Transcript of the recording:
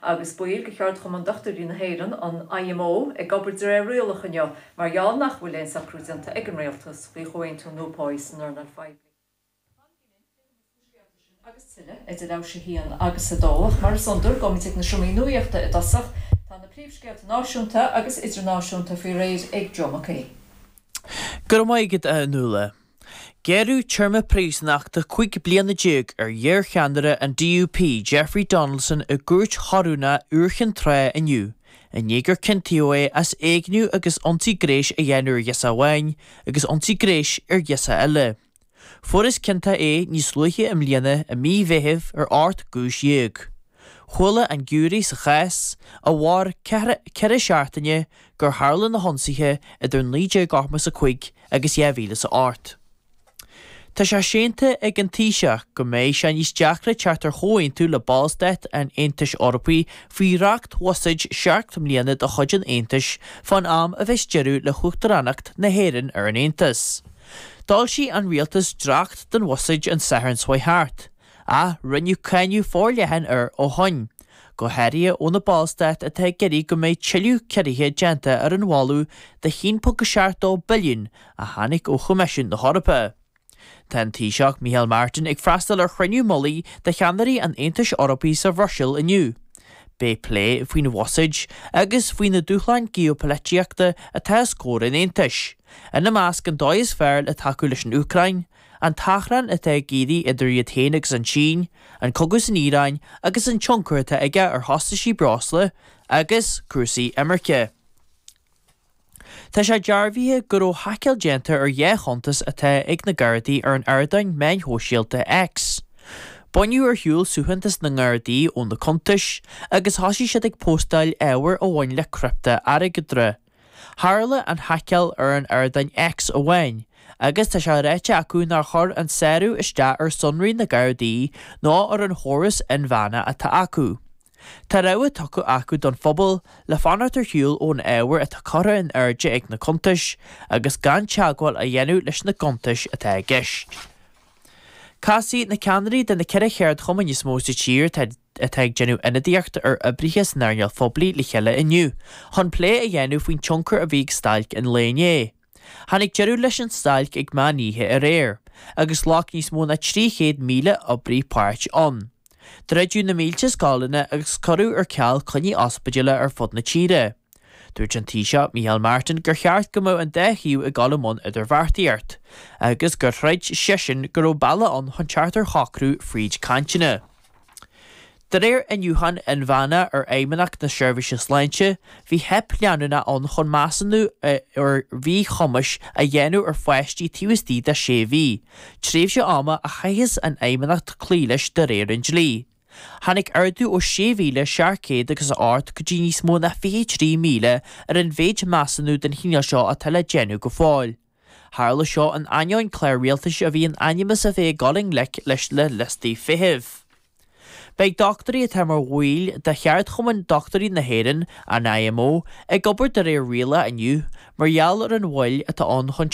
Agus baill de Cheardchumann Dochtúirí na hÉireann, an IMO, ag obair de réir rialach inniu mar gheall nach bhfuil aon socrú déanta ag an Rialtas faoi chomhaontú nua páí san earnáil phoiblí. Tá an cinneadh ag titim as na scéalta sin agus tuilleadh idir leathuair tar éis 1 agus 2. Ach mar is iondúil, gabhaimid ag na seomraí nuaíochta i dtosach. Tá na príomhscéalta náisiúnta agus idirnáisiúnta faoi réir ag Joe Mac Aoidh. Go raibh maith agat, a Fhionnuala. Gearradh téarma príosúnachta cúig bliana déag ar iarcheannaire an DUP, Jeffrey Donaldson, i gCúirt Chorónach Iúr Chinn Trá inniu i ndiaidh gur ciontaíodh é as éigniú agus ionsaí gréis a dhéanamh ar ghirseach amháin agus ionsaí gréis ar ghirseach eile. Fuarthas ciontach é níos luaithe i mbliana i mí Mheithimh ar ocht gcúis dhéag. Chuala an giúiré sa chás, a mhair ceithre seachtaine, gur tharla na hionsaithe idir 1985 agus dhá mhíle is a hocht. Tá sé séanta ag an Taoiseach go mbeidh sé níos deacra teacht ar chomhaontú le ballstáit an Aontais Eorpaigh faoi dhréachtbhuiséad seacht mbliana de chuid an Aontais fán am a bheas deireadh le hUachtaránacht na hÉireann ar an Aontas. D'fhoilsigh an Rialtas dréacht den bhuiséad an Satharn seo thart. Ach rinneadh cáineadh forleathan air ó shoin, go háirithe ó na Ballstáit atá ag iarraidh go mbeidh tuilleadh ciorruithe déanta ar an mholadh de €1.72 billiún a tháinig ó Choimisiún na hEorpa. Tá an Taoiseach Micheál Martin ag freastal ar chruinniú mullaigh de cheannairí an Aontais Eorpaigh sa Bhruiséil inniu. Beidh plé faoin bhuiséad agus faoi na dúshláin geopolaitíochta atá os comhair an Aontais, ina measc an dóigh is fearr le tacú leis an Úcráin, an t-achrann atá ag éirí idir iad féin agus an tSín, an cogadh san Iaráin agus an tionchar atá aige ar chostaisí breosla agus cúrsaí imirce. Tá sé dearbhaithe go raibh haiceáil déanta ar dhá chuntas atá ag na Gardaí ar an ardáin meáin shóisialta X. Baineadh ar shiúl suaitheantas na nGardaí ó na cuntais agus thosaigh siad ag póstáil ábhar a bhain le criptea-airgeadra. Tharla an haiceáil ar an ardáin X amháin agus tá sé ráite acu nár chuir an sárú isteach ar sonraí na Gardaí ná ar an chóras inmheánach atá acu. Tá rabhadh tugtha acu don phobal le fanacht ar shiúl ón ábhar atá curtha in airde ag na cuntais agus gan teagmháil a dhéanamh leis na gcuntais atá i gceist. Casfaidh na ceannairí de na ceithre cheardchumann is mó sa tír atá atá ag déanamh ionadaíochta ar oibrithe san earnáil phoiblí le chéile inniu chun plé a dhéanamh faoin tionchar a bhí ag stailc an lae inné. Tháinig deireadh leis an stailc ag meán oíche aréir agus ghlac níos mó ná 300,000 oibrí páirt ann. Druideadh na mílte scoileanna agus cuireadh ar ceal coinní ospidéil ar fud na tíre. Dúirt an Taoiseach Micheál Martin gur cheart go mbeadh an dá thaobh ag dul i mbun idirbheartaíocht agus gur chreid seisean go raibh bealaigh ann chun teacht ar shocrú fríd cainteanna. De réir iniúcháin inmheánna ar Fheidhmeannacht na Seirbhíse Sláinte, bhí teip leanúnach ann chun measúnú ar mhíchumais a dhéanamh ar pháistí taobh istigh de sé mhí, tréimhse ama a chaitheas an Fheidhmeannacht cloí leis de réir an dlí. Tháinig ardú ó 6,600 agus a hocht go dtí níos mó ná 23,000 ar an mhéid measúnú den chineál seo atá le déanamh go fóill. Tharla seo in ainneoin clár rialtais a bhí in ainm is a bheith ag dul i ngleic leis na liostaí feithimh. Beidh dochtúirí atá mar bhaill de Cheardchumann Dochtúirí na hÉireann, an IMO, ag obair de réir rialacha inniu mar gheall ar an mhoill atá ann chun